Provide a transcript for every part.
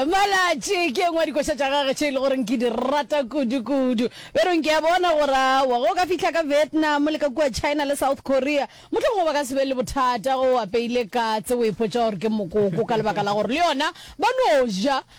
malatši ke engwe dikoša tša gage tše e le goreng ke di rata kudu-kudu berong ke a bona gore awa go ka fihla ka vietnam le ka kua china le south korea motlho mongwe ba ka se be le bothata go apeile katse o ipotsa gore ke mokoko ka lebaka la gore le yona ba no ja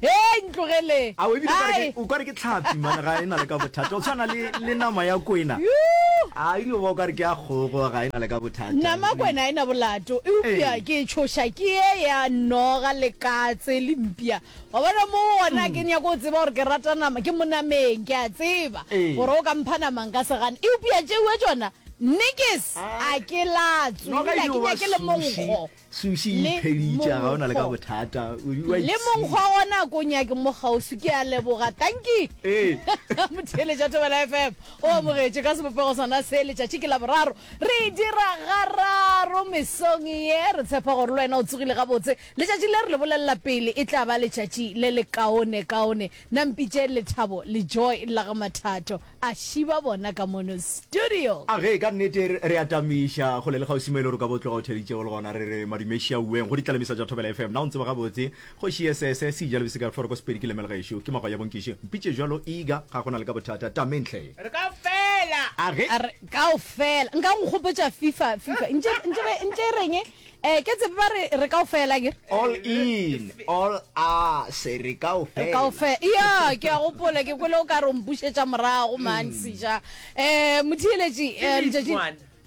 Hei ntlogele A o ebile o ka re ke, Ai. o ka re ke tlhapi mane ga e na le ka bothata. O tshwana le, le nama ya kwena. Yuu. A e dio ba o ka re ke ya kgogo ga e na le ka bothata. Nama ya kwena ga e na bolato. Eupša Ee. ke e tšhoša ke ye ya noga le katse le mpša. Wa bona mo gona ke nyaka go tseba gore ke rata nama, ke mo nameng, ke a tseba Ee. gore o ka mpha nama nka se gane. Eupša tšeue tšona, niks, a ke latswe Noga e ebile ga ke dio ba nyake le sushi. monkgo. suši e ipheditša ga o na le ka bothata le monkgwa gona ko nyake mo kgauswi ke a leboga tanki motheletša thobela fm o amogetše ka sebopego sona se letšatši ke la boraro re dira gararo mesong ye re tshepa gore le wena o tsogile gabotse letšatši le re le bolelela pele e tla ba letšatši le le kaone kaone nampitše lethabo le joy la ga mathato a šiba bona ka mono studio. A ge ka nnete re a tamiša, kgole le kgauswi mo e le gore o ka bo tloga o theeditšego le gona. Re re madumeši a uweng go ditlalemiso tša Thobela FM. Na o ntseba gabotse? Kgoši ye sese, se ijalo biseka hloroko sepedi ke lemel gešo. Ke Magoya Bonkiši. Mpitše jwalo Iga, ga go na le ka bothata. Tameng hle. A re kaofela. A re kaofela. Nka nkgopotša FIFA, FIFA. Ntše, ntše, ntše e reng e? Eh, ke tsebe ba re re kaofela ke All in, all are, se re kaofela. Kaofela. Ya, ke a gopola ke kwele o ka re mpušetša morago man mm. sija. Eh, motheeletši eh letšatši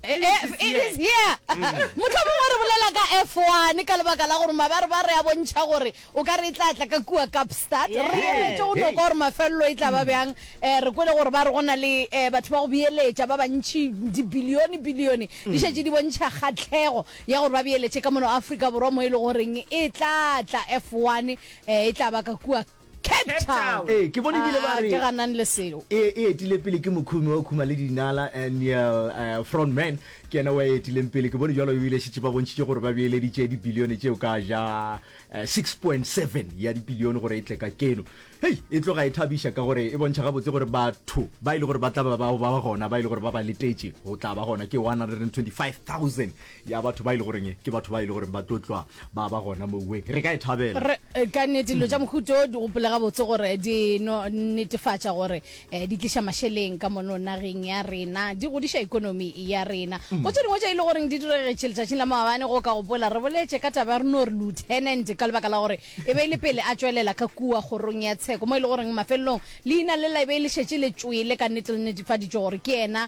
eh, eh, it is here. Mm. Motlha mongwe re bolela ka F1 ka lebaka la gore mabare ba re a bontšha gore O ka re e tla tla ka kua Kaapstad. Re eletše go no kwa gore mafelelo e tla ba bjang. Re kwele gore ba re go na le batho ba go beeletša ba bantši, dibilione, bilione di šetše di bontšha kgahlego ya gore ba beeletše ka mono Afrika Borwa mo e lego goreng e tla tla. F1 e tla ba ka kua Cape Town. Ee, ke bona ebile ba re Ke ganane le seo. e e etile pele ke mokhumi wa go khuma le dinala, Neil Froneman ke yena o a e etileng pele. Ke bone bjalo ebile šetše ba bontšhitše gore ba beeleditše dibilione tšeo ka ja 6.7 ya dibilione gore e tle ka keno. Hei, e tloga e thabiša ka gore e bontšha gabotse gore batho ba e le gore ba tla ba ba ba gona ba e le gore ba ba letetše go tla ba gona ke 125,000 ya batho ba e le goreng ke batho ba e le gore ba tlotlwa ba ba gona mouweng. Re ka e thabela. Re, ka nnete, dilo tša mohuto di gopola gabotse gore di no netefatša gore Di tliša mašeleng ka mono nageng ya rena, di godiša ekonomi ya rena. Go tše dingwe tše e le goreng di diregetše letšatšing la maabane, go ka gopola re boletše ka taba ya Rnor Lieutenant ka lebaka la gore e be e le pele a tšwelela ka kua kgorong ya tsheko, mo e le goreng mafelelong leina lela e be e le šetše le tšwele ka nnete, le netefaditšwe gore ke yena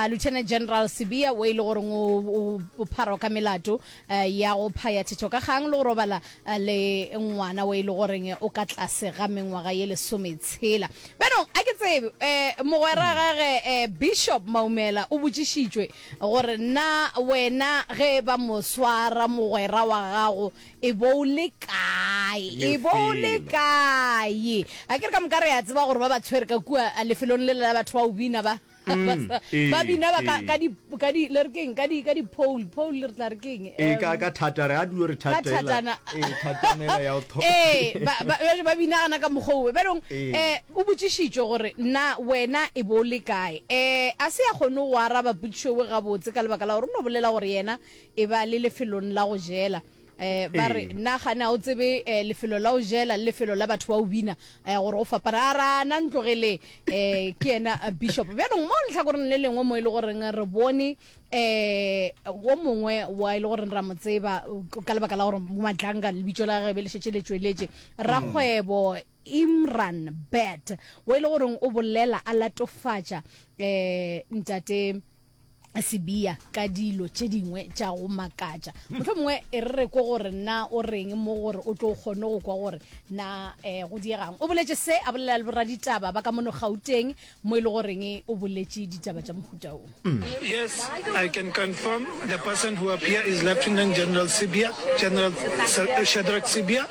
Lieutenant General Sibiya, wo e le goreng o pharoka melato ya go phaya thetho ka kgang le go robala le ngwana wo e le goreng o ka tlase ga mengwaga ye lesometshela. Bjanong a ke tsebe mogwera gage Bishop Maumela o botšišitšwe gore na wena ge ba mo swara mogwera wa gago e bo o le kae, e bo o le kae. Akere ka moka re a tseba gore ba ba tshwere ka kua lefelong lela la batho ba go bina ba. Mm, ee, ba bina ba ka ee. ka di ka di le re keng ka di ka di pole pole le re tla re keng ee ka ka thata re a duo re ka thatela thatana ee thatanela ya go thopa ee ba ba bjale ba bina gana ka mokgowe bjalong Ee. eh o botšišitšwe gore na wena e bo o le kae eh a se ya kgone go araba potšišo we gabotse ka lebaka la gore o no bolela gore yena e ba le lefelong la go jela eh ba re Ee. nna gane a o tsebe eh, lefelo la o jela le lefelo la batho ba o bina eh, gore go fapana a ra na ntlogele eh, ke ena eh, bishop bjanong mo letlhakoreng le lengwe mo e le goreng re bone eh wo mongwe wa e le goreng ra mo tseba o- ka lebaka la gore matlanga lebitso la gage be le šetše le tšweletše rakgwebo imran bet wo e le goreng o bolela a latofatša eh ntate Sibiya ka dilo tše dingwe tša go makatša. Hmm. Mohlho mongwe e re re ko gore na o reng mo gore o tlo kgone go kwa gore na um go diegang. O boletše se a bolela le boraditaba ba ka mono gauteng mo e le goreng o boletše ditaba tša mohuta o. Hmm. Yes, I can confirm the person who appear is Lieutenant General Sibiya, General Shadrack Sibiya.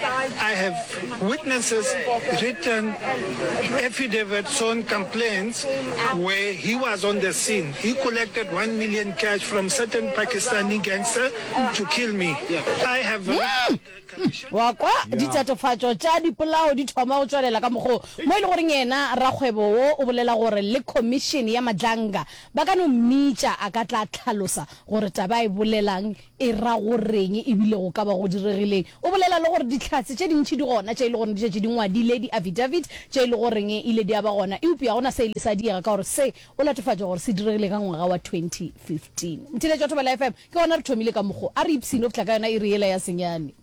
I have witnesses written affidavits on complaints where he was on the scene. He collected 1 million cash from certain Pakistani gangster to kill me. I have wa kwa ditatofatšo tša dipolao di thoma go tšwelela ka mokgo mo e le goreng yena rakgwebo wo o bolela gore le khomišene ya madlanga ba ka no mmitša a ka tla tlhalosa gore taba e bolelang E ra go re'ng e bile go ka ba go diregile'ng? O bolela le gore dihlatse tše dintši di gona tše e le gore di šetše di ngwadile di-affidavit tše e le gore e ile di a ba gona, eupša ga go na se ile sa diega ka gore se o latofatša gore se diregile ka ngwaga wa 2015. Mtheletšo wa Thobela FM, ke gona re thomile ka mokgo a re ipsene go fihla ka yona iri yela ya senyane.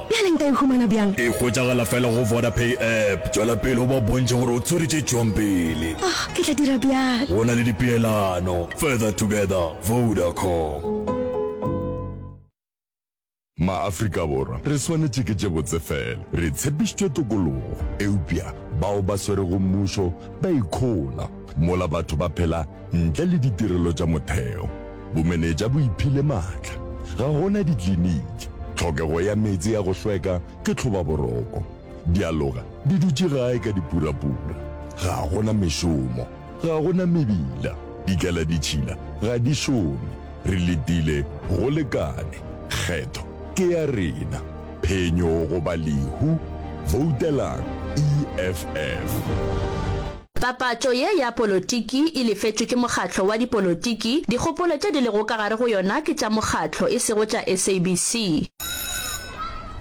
Bjale nka e humana bjang? E hwetšagala fela go Vodapay app. Tšwela pele o ba bontšhe gore o tswere tše tšwang pele. Oh, ke tla dira bjalo. Go na le dipeelano. Further together, Vodacom. Ma-Afrika Borwa re swanetše ke tše botse fela. Re tshepištšwe tokologo, eupša bao ba swerego mmušo ba ikhola mola batho ba phela Ntle le ditirelo tša motheo, bomenetša bo iphile maatla. Ga go na dikliniki, tlhokego ya meetse ya go hlweka ke tlhobaboroko, dialoga di dutše gae ka dipurapura, ga go na mešomo, ga go na mebila, dikaladitšhila ga di šome, re letile go lekane, kgetho ke ya rena, phenyo goba lehu, voutelang EFF. Papatšo ye ya polotiki e lefetšwe ke mokgatlo wa dipolotiki, dikgopolo tše di lego ka gare go yona ke tša mokgatlo, e sego tša SABC.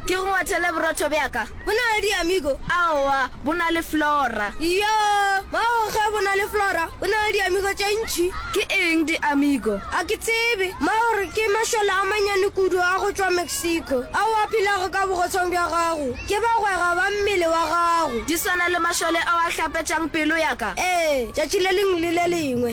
Ke go ngwathele borotho bja ka. Bo na le diamigo? Aowa, bo na le flora. Iyoo! Mago ge bo na le flora, bo na le diamigo tše ntši. Ke eng diamigo? A ke tsebe. Mago re ke mašole a mannyane kudu a go tšwa Mexico. Siko, ao a phelago ka bogotshwang bja gago, ke bagwera ba mmele wa gago. Di swana le mašole ao a hlapetšang pelo ya ka, ee, tšatši le lengwe le le lengwe.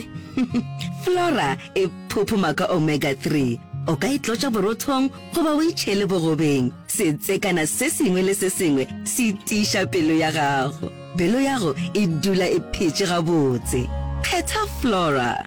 Flora e phuphuma ka omega three. O ka e tlotša borothong goba o e tšhele bogobeng. Setsekana se sengwe le se sengwe se tiiša pelo ya gago. Pelo ya go e dula e phetše gabotse. Kgetha Flora.